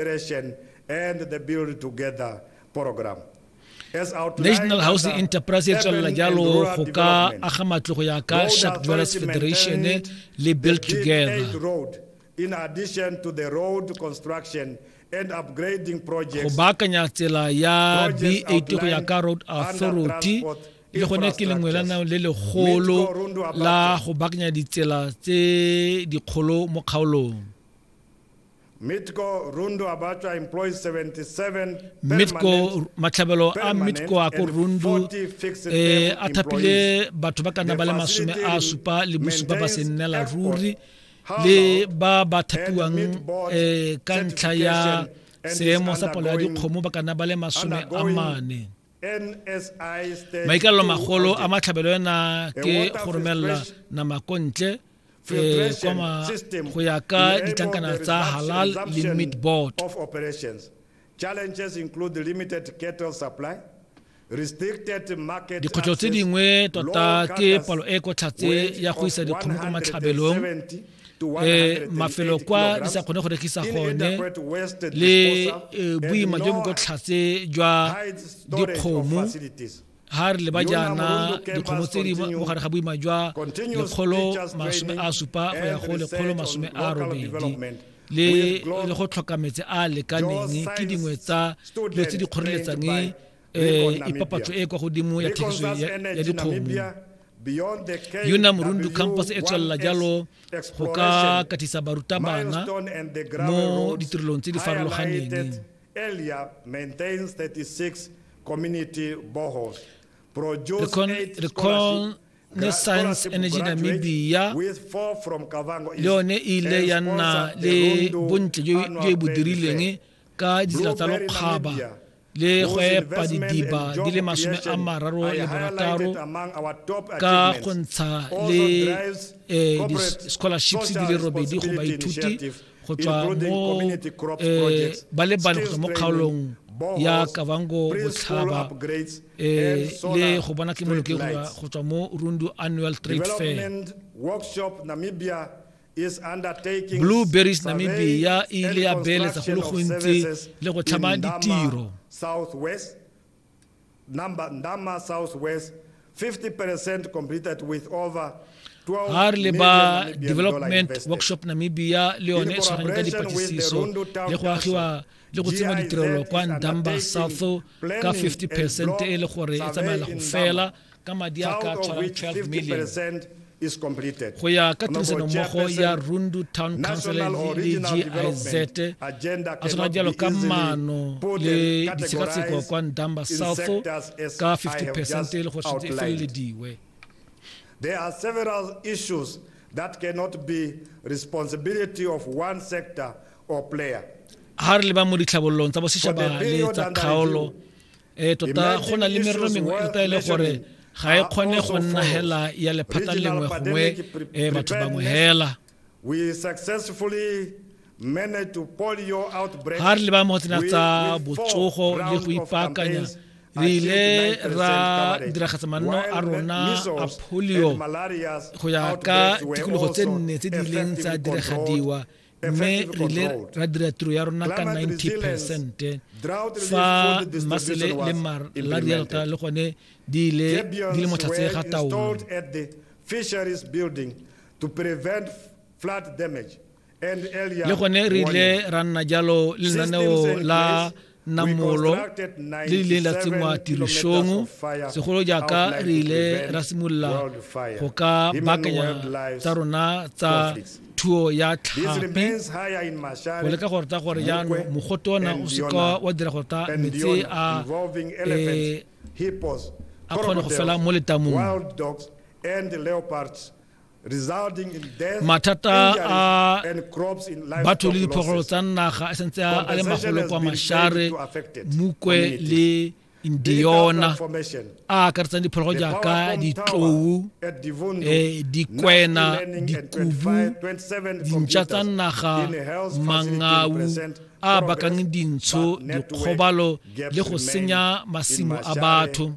Federation and the Build Together program. As outlined National under Housing Enterprise e tswelela Urban and jalo Rural go ka Development, aga matlo go ya ka Road Shark Dwellers Authority Federation maintained le the Build Big Together. Eight Road in addition to the road construction and upgrading go projects baakanya tsela ya Projects b8 go ya ka road outlined under authority transport le gone ke lengwe la nang le legolo Mitko Rundu Abate. la go baakanya ditsela tse dikgolo mo kgaolong mitco matlhabelo a mitco a ko rundu eh, a thapile batho ba ka nna ba le masome a supa le bosupa ba se nnela ruri le ba ba thapiwang eh, ka ntlha ya seemo sa palo ya dikgomo ba ka nna ba le masome a mane maikalelo magolo a matlhabelo ena ke go romelela nama ko ntle e kwama go ya ka ditlankana tsa halal le meat board dikgwetlho tse dingwe tota ke palo e kwa tlhatse ya go isa dikgomo kwa matlhabelong eh, mafelo kwa di sa kgone go rekisa gone le eh, boima jo bo kwa tlhatse jwa dikgomo ha re leba jaana dikgomo tse di mo gare ga boima jwa lekgolo masome a supa go ya go lekgolo masome a robedi le le go tlhoka metse a lekaneng ke dingwe tsa dilo tse di kgoreletsang um eh, ipapatso e kwa godimo ya thekiso ya dikgomo yona morundu campus e tswelela jalo go ka katisa barutabana mo ditirelong tse di farologaneng Lekon ne Science Energy Namibia le yone e ile ya nna le bontle jo e bo dirileng ka ditsela tsa lokgaba le go epa didiba di le masome a mararo le borataro ka go ntsha le eh, di-scholarships di le robedi go baithuti go tswa mo eh, ba le bane go tswa mo kgaolong ya kavango botlhaba eh, le go bona ke moloke go tswa mo rundu annual trade fair blue berries namibia e ile ya beeletsa go le gontsi le go tlhama ditiro Number, Ndama Southwest, 50% completed with over 12 Harleba million Namibian dollar Development invested. Workshop Namibia le yone e tshwarang ka dipatlisiso le go agiwa le go tsengwa ditirelo kwa Ndamba South ka 50 percent e le gore e tsamaela go fela ka madi a ka tshwarang 12 million go ya ka tirisanommogo ya rundu town council le giz a tshwana jalo ka maano le ditshekatsheko kwa ndamba south ka 50 percent e le go e felelediwe There are several issues that cannot be responsibility of one sector or player. Ha re leba mo ditlhabololong tsa bosetšhaba le tsa kgaolo ee tota go na le merero mengwe e tota e le gore ga e kgone go nna hela ya lephata lengwe gongwe e batho bangwe hela ga re leba mo tsena tsa botsogo le go ipaakanya re ile ra diragatsa manno a rona a polio go ya ka tikologo tse nne tse di ileng tsa diragadiwa mme re le ra dira tiro ya rona ka 90 percent fa masele le mar la rialta le gone di ile di le motlhatse ga taolo fisheries building to prevent flood damage le gone re ile ra nna jalo lenaneo la namolo le rileng la tsenngwa tirisong segolo jaaka re ile ra simolola go ka baakanya tsa rona tsa thuo ya tlhapi go leka gore ta gore jaanong mogote ona o seka wa dira gore ta metsi a eh, a kgone go fela mo letamong mathata a batho le diphogolo tsa naga a sentse a le magolo kwa mashare mukwe le indiona a akaretsang diphologo jaaka ditlou eh, dikwena dikubu dintšha tsa naga mangau a bakang dintsho dikgobalo le go senya masimo a batho